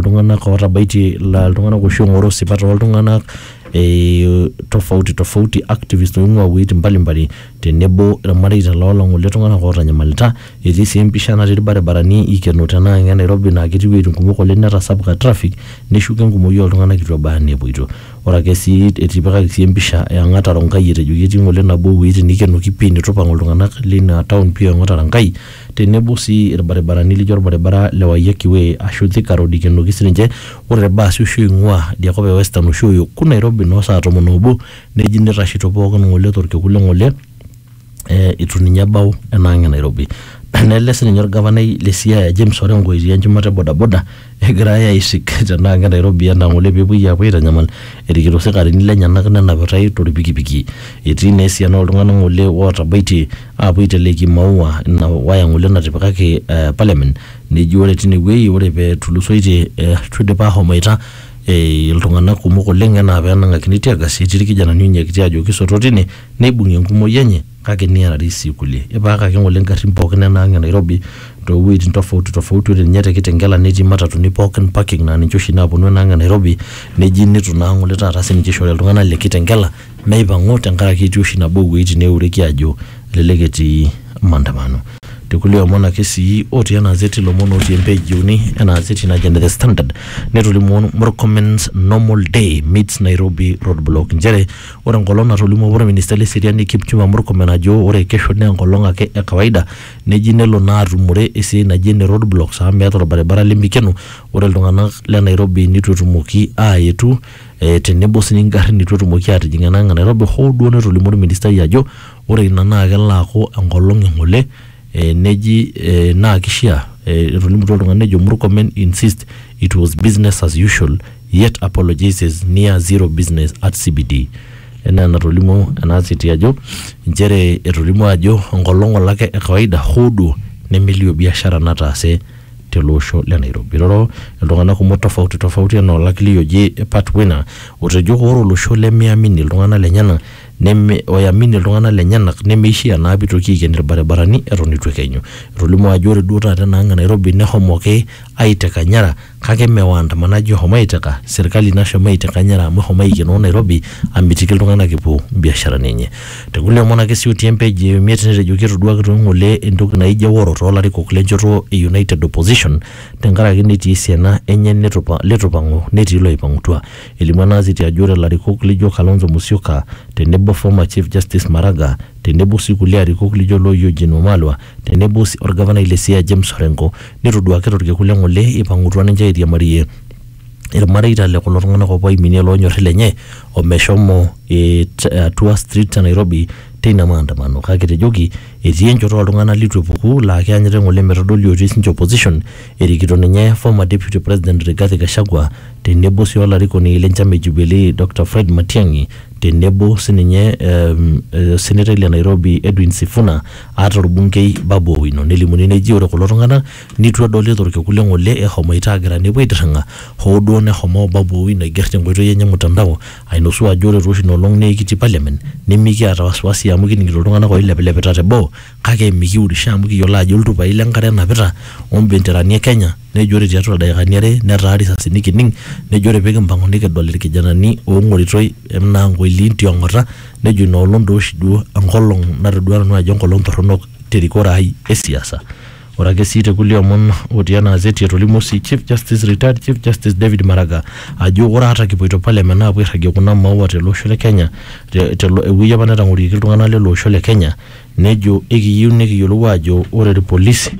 iltung'anak ootabaitie ila iltung'anak oshi oong'oroo isipat ooltung'anak eh, tofauti tofauti activist oing'ua iwuejitin mbalimbali tenebo irmareita loo long'ole tung'anak ootanyamalita etii sii empisha natii irbaribarani ikeno tenaa ine Nairobi naa ketii iwuejitin kumok oleng netasapuka traffic neshuko enkumoi ooltung'anak itu ebaya enaa epuoito ore ake sii etipikaki sii empisha e Ang'ata Ronkai etejoki etii ng'ole nabo ewuejitin nikenoki pii nitu ipang'u iltung'anak lina town pii o Ang'ata Ronkai tenebo sii ilbaribarani lijo olbaribara le Waiyaki Way aashu Thika Road eikenoki sininche ore te baasi oshi oing'ua idia kop e Western oshi oyoku Nairobi noo saa tomon oobo neji neitashito pooki ng'ole to lkekun le ng'ole eitu ninye ebau ena ang e Nairobi. Nele sininye olgavanai le Siaya James Orengo etii enchumata e bodaboda. Egirai aisik tenaa ke Nairobi enaa ng'ole pepuoi apuo aitanyamal erikito sikarini lenyenak nenapitai tolpikipiki. Etii naa esiana oltung'ana ng'ole ootabaitie apuo aiteleki imaua ina waya ng'ole natipikaki parliament neji ore tine wei ore petulusoitie eitu idipa ahomoita iltung'ana kumok oleng' enaa penang'akini teargas etii ilkijanani onyiakiti ajo kisoto tine neibung'i enkumoi enye. kake niarari sii kulie. Ipaakaki ng'ole ngarrin pookin enaang' e Nairobi too wueitin tofauti tofauti ore ninye te Kitengela netii matatuni pookin parking naa ninche oshi naaponu enaang' e Nairobi neji nitu naa ng'ole taata sininche ishori iltung'anak le Kitengela meipang'u tenkaraki etii oshi nabo oo wueitin neeureki aajo elelek etii maandamano. Te kulie omon ake sii otii ena azeti ilomon ootii empage e uni ena azeti naji ene The Standard netolimuo Murkomen's normal day meets Nairobi roadblock nchere Ore enkolong natolimuo apa orministai le seriani Kipchumba Murkomen ajo ore kesho naa enkolong ake e kawaida neji nelo naa atumore esiai naji ene road blocks amu meeta orbaribara lemikeno ore iltung'anak le Nairobi nitu etumoki aayetu eh, tenebo sii ingarrin nitu etumoki aatijing ena ang e Nairobi hoo duo netolimuo orministai ajo ore ina naa kelo aaku enkolong e ng'ole eh, neji eh, naa kishia eh, etolimutuo oltung'ani nejo Murkomen insist it was business as usual yet apologizes near zero business at CBD enaa enatolimuo ena siti ajo nchere etolimuo ajo enkolong olake e kawaida hoo duo nemelio biashara nataase tele osho le Nairobi. Iroro iltung'anak kumok tofauti tofauti enaa olakili oji Pat Wina otejo ore olosho lemeamini iltung'anak lenyenak neme oyamini iltung'anak lenyenak nemeishia naa pitoki aiken ilbaribarani eton eitu ekenyu. Etolimuo ajo ore duo taata enaang e Nairobi nehomoki aiteka nyara kake mme waandamanaji ohomo aiteka, serkali nashomo aiteka nyara amu ehomo aikenoo Nairobi amitiki iltung'anak epuo mbiasharani enye. Te kulie omon ake sii otii empage e miet netejoki etoduaki too ng'ole entoki naijo eworo too larikok le njoto e United Opposition tenkaraki netii esiana enye leitu eipang'u netii looipang'utua. Elimu ena azeti ajo ore larikok lijo Kalonzo Musyoka tenebo former Chief Justice Maraga tenebo sii kulie arikok lijo loo Eugene Wamalwa tenebo sii olgavanai le Siaya James Orengo netoduaki to lkekun le ng'ole eipang'utua ninche airiamarie ilmareita le kulo tung'anak opuo aiminie loonyori lenye o meshomo it atua streets e Nairobi teina maandamano kake etejoki etii enchoto oo ltung'anak leitu epuku laa keanyita eng'ole metodoli otii sinche opposition erikito ninye former Deputy President Rigathi Gachagua tenebo sii olarikoni le nchama e Jubilee Doctor Fred Matiang'i tenebo sininye osenetai le Nairobi Edwin Sifuna ata olbunkei Babu Owino nelimuni neji ore kulo tung'ana neitu edoli tolkekun le ng'ole eshomoita aagira nepuo aitirring'a hoo duo neshomo Babu Owino aiger tenkoitoi enye e mutandao ainosu ajo ore taa oshi ina olong naa ekitii parliament nimikiata wasiwasi amu kining'ito iltung'ana ooilepilepita teboo kake mikiurisho amu kiyiolo ajo iltupai le nkare enapita o mbenterani e Kenya nejo ore tiatua ildaikani are netaa risasini kining nejo ore pikimpang'u nikidol ilkijanani oong'oritoi enaa nkoiliin ti ong'ota nejo ina olong doo oshi duo enkolong natodua nanu ajo enkolong torronok te rikore ai e siasa. Ore ake sii te kulie omon otii ena azeti etolimuo sii Chief Justice, Retired Chief Justice David Maraga ajo ore ata kipuoito parliament aapuo airragie kuna maua tele osho le Kenya te te ewuei apa netang'orieki iltung'anak lele osho le Kenya nejo ekiyieu nikiyiolou aajo ore irpolisi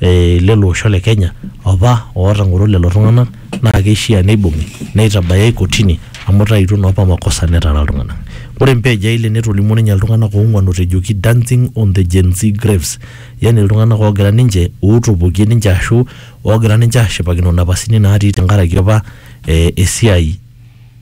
eh, lelo osho le Kenya opa ootang'oro lelo tung'anak naa keishia neibung'i neitabayai kotini amu itaituo naa opa makosa netara iltung'anak. Ore empage eile netolimuo ninye iltung'anak oong'uan otejoki dancing on the Gen Z graves yani iltung'anak oogira ninche ootopokie ninche ashu oogira ninche aashipakino inapasini naatii tenkaraki opa eh, esiai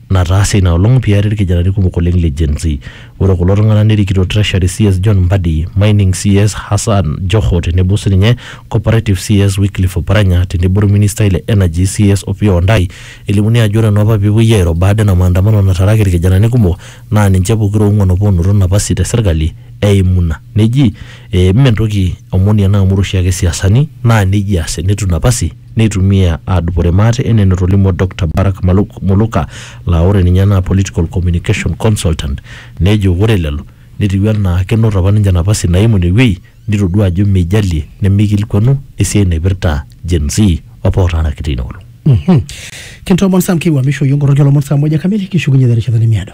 nataase ina olong peyie eari ilkijanani kumok oleng le Gen Z. Ore kulo tung'ana nerikito Treasury CS John Mbadi, Mining CS Hassan Joho tenebo sininye Cooperative CS Wycliffe Oparanya tenebo olministai le Energy CS Opiyo Wandayi. Elimuni ajo ore naa apa pee epuoi airo baada ena maandamano nataaraki ilkijanani kumok naa ninche pokira oong'uan apa oonoto napasi te serkali eimu ina. Neji, Mme entoki omoni ena amu ore oshiake isiasani naa neijia eas tenitum napasi. neitumia aadupore maate enaa enotolimuo Dokta Barak Maluk Muluka laa ore ninye naa Political Communication Consultant nejo ore lelo netiu enaa kenoto apa ninche napasi naimu ine wueji nitodua ajo meijalie nemeikilikuanu esiai naipirta Gen Z apa ootaaraki teina olong. Kintoomon Sam kiwuamisho iyiook nkoroki oolomon saa moja kamili kishukunye terishata nemiado.